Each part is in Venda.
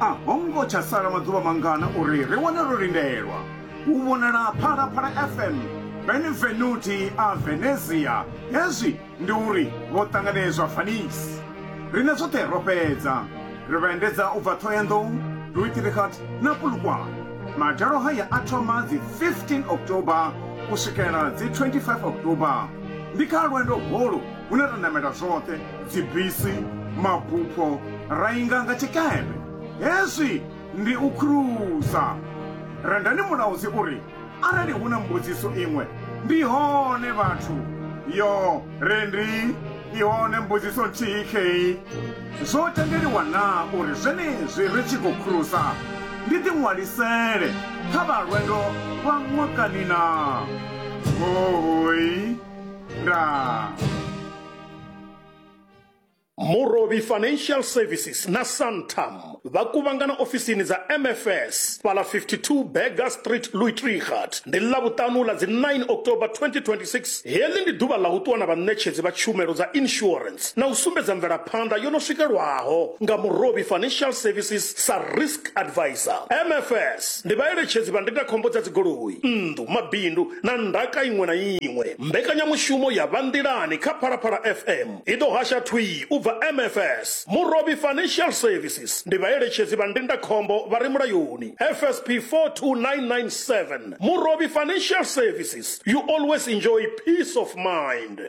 a ho ngo tsha sala maḓuvha mangana uri ri wane ro lindelwa u vhonala phalaphala fm benevenuti a venezia hezwi ndi uri vho ṱanganedzwa fanis rine zwoṱhe ro fhedza ri vha endedza u bva thoyandou duitirikhat na pulukwana madalo haya a thoma dzi 15 october u swikela dzi 25 october ndi kha lwendo holu hune ra namela zwoṱhe, dzibisi, mabupho, ra inga nga tshikepe. Hezwi ndi u khulusa. Rendani Mulaudzi u ri, Arali hu na mbudziso iṅwe, ndi hone vhathu. Yo, Rendi, i hone mbudziso nthihi khei. Zwo tendeliwa naa uri zwenezwi ri tshi khou khulusa ndi ḓiṅwalisele kha vha lwendo lwa ṅwakani naa? Hoooi! murovhi financial services na santam vha kuvhangana ofisini dza mfs fhala 52 berger street louitrigat ndi ḽavhuṱanu ḽa dzi 9 october 2026 heḽi ndi ḓuvha ḽa u ṱuwa na vhaṋetshedzi vha tshumelo dza insurance na u sumbedza mvelaphanḓa yo no swikelwaho nga murovhi financial services sa risk advisor mfs ndi vhaeletshedzi vha ndindakhombo dza dzigoloi nnḓu mabindu na ndaka iṅwe na iṅwe. Mbekanyamushumo ya Vha Nḓilani kha Phalaphala FM i ḓo hasha thwii u bva MFS. Murovhi Financial Services ndi vhaeletshedzi vha ndindakhombo vha re mulayoni, FSP 42997. Murovhi Financial Services, you always enjoy peace of mind.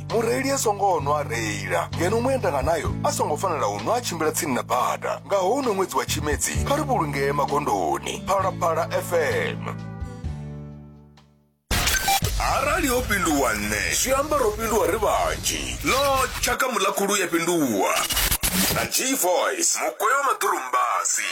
mureili a songo nwa a reila ngeno muendanga nayo a songo fanela u nwa a tshimbila tsini na bada nga houno ṅwedzi wa tshimedzi kha ri vhulungee magondoni phalaphala fm arali ho pinduwa nṋe zwi amba ro pinduwa ri vhanzhi no tshaka muḽakhulu ya pinduwa na g voice mugweyo maḓurumbasi